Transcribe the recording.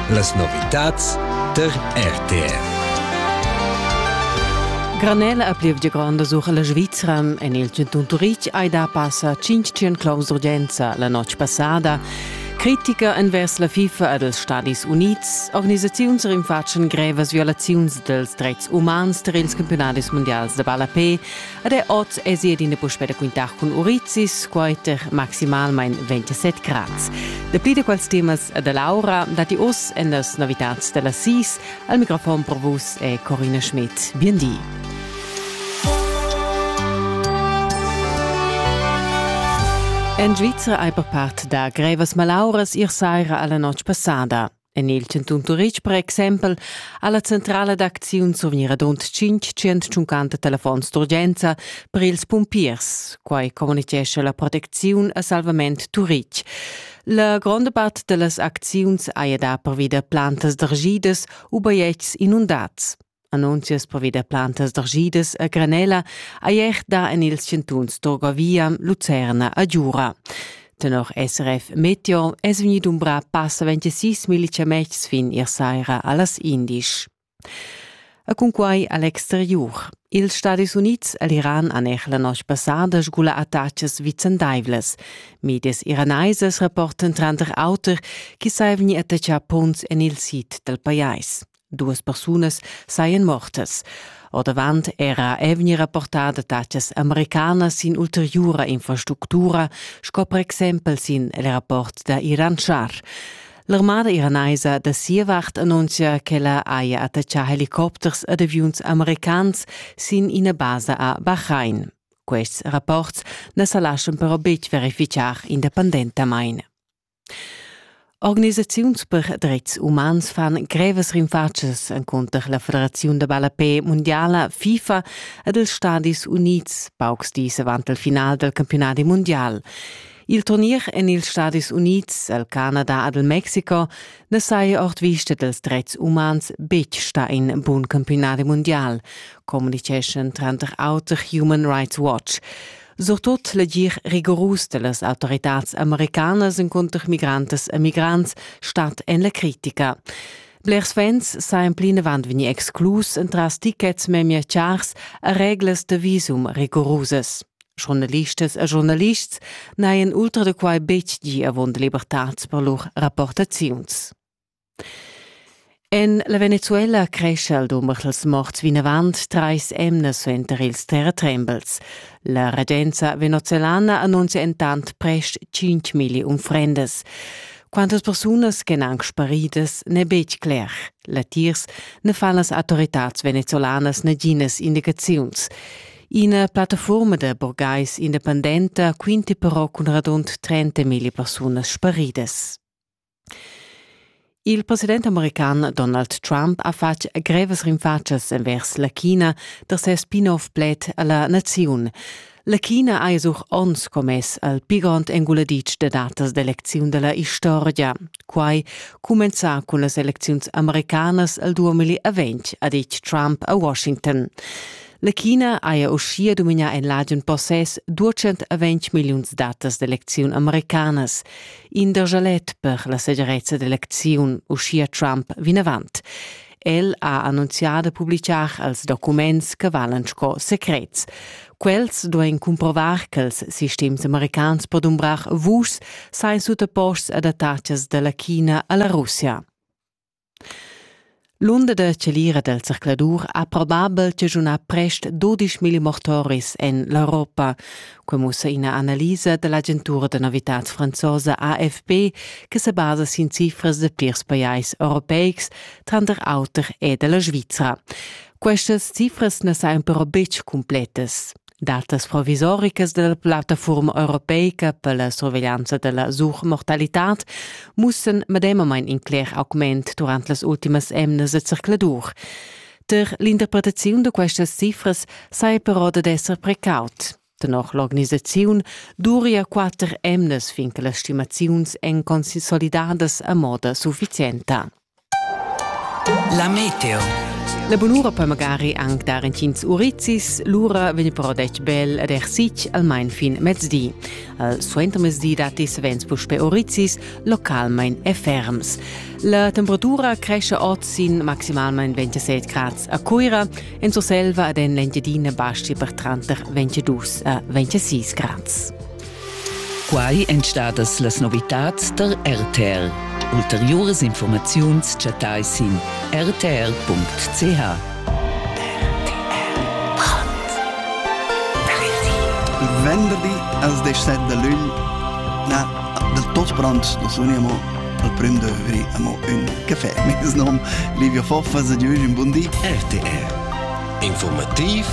Las novitads tar RTR. Granella a plievgia granda sur la Svizra en il Centun Turitg hai da passa 500 claus d'urgenza la notg passada. Critica envers la FIFA ed els Stadis Unids, organisaziuns rinfatschen grevas violaziuns dels dreits umans tar ils campionatis mondials de ballapé, Ed er oz èsi adina puspè da quintar cun urizis, quai tar maximalmain 27 grads. Dapli da quels temas da Laura datti oz en las novitads da las sis. Al microfon per vus è Corina Schmidt. Bien di. En Svizra hai per part da grevas malauras ir saira alla notg passada. En il chantun Turitg per exempel ha la centrala d'acziun survgnira rund 550 telefons d'urgenza per ils pumpiers. Quai communitgescha la protecziun a Salvament Turitg. La gronda part da las acziuns haja dà pervi da plantas d'argidas u bajetgs inundats. Annunzias pervida plantas d'argidas a Granella ei er da en ils chantuns d'Orgovia, Lucerna e Giura. Tenor SRF Meteo è vegnì dumbrà passa 26 millichametgs fin ier saira a las indisch. E cunquai a l'exteriur. Ils Stadis Unids e l'Iran han er la noce passada sgula attachas vicendaivlas. Medias iranaisas rapportan tranter auter che sai vegnir attachà punts en il sid dal pajais. Duas persunas sajan mortas. Ordavant era è vegnir rapportada datas americanas sin ulteriura infrastructura, sco per exempel sin il rapport da Iran Shar. L'armada iranaisa da sia vart annunzia ch'ella haja attaccà helicopters ed aviuns americans sin ina basa a Bahrain. Quests rapports na sa laschan però betg verificar independentamain. Organisaziuns per dretgs umans fan grevas rinfatschas encunter la Federaziun da ballapé mundiala FIFA ed els Stadis Unids paucs dis avant il final dal campionadi mundial. Il turnier en ils Stadis Unids, el Canada ed il Mexiko na saja ord vista dals dretgs umans betg stà in bun campionadi mundial, communiceschan tranter auter Human Rights Watch. surtut legir rigorus dellas autoritads americanas encunter migrantas e migrants stat en la critica. Blers fans sajan plinavant vegnir exclus entras tickets memia chars a reglas da visum rigorusas. Journalistas e journalists n'hajan ultra da quai betg gì avon libertads per lur rapportaziuns. En la Venezuela crescha il dumber dals morts vinavant trais emnas suenter ils terratrembels. La regenza venezuelana annunzia entant prest 5.000 unfrendas. Quantas persunas ch'èn anc sparidas n'è betg cler. Latiers ne fan las autoritads venezolanas naginas indicaziuns. Ina plattaforma da burgais independenta quinti però cun radund 30.000 persunas sparidas. Il president american Donald Trump ha fatg grevas rinfatschas envers la China da ses spin-off pled a la naziun. La China ha esuch onns commess al pi grond enguladitsch da datas d'elecziun da la istorgia. Quai cumenzà cun las elecziuns americanas al 2020, ha ditg Trump a Washington. La China haja uschia dominà en l'agen possess 220 milliuns datas d'elecziun americanas. in da jalet per la segirezza d'elecziun, uschia Trump vinavant. El ha annunzià da publicar els documents che valan sco secrets. Quels duain cumprovar ch'ils sistems americans po dumbrar vuschs sain sutaposts ad attacas da la China a la Russia. L'unda da chalira dal zercladur ha probabel chaschunà prest dudisch milli mortoris en l'Europa. Quai mussa ina analisa da l'agentura da novitads franzosa AFP che sa basa sin cifras da plirs pajais europeics, tranter auter e da la Svizra. Questas cifras na sajan però betg cumplettas. Datas provisoricas della plattafuorma europeica per la surveglianza della suchmortalitad mussen medemamein in cler augment durant las ultimas emnas e zercladur. Per l'interpretaziun da questas cifras sai però dad esser precaut. Tenor l'organisaziun duria quatter emnas fin che las stimaziuns èn consolidadas a moda sufficienta. La meteo. La bunura per magari anc dar entgins urizis, lura vegn però detg bel ed ersitg almain fin mezdi. Al suentermezdi datti savens puspè urizis, localmain e ferms. La temperatura cresce oz sin maximalmain 27 grads a Cuira, en Surselva ed en l'Engiadina basci per tranter 22 a 26 grads. Quai èn stadas las novitads tar RTR. Ulteriuras informaziuns chattai sin rtr.ch. venderdi als 17 de lun na del tot brunch da suniamo al prim de vri amo un café mes nom Livio Foffas e Giulio un buon di RTR Informativ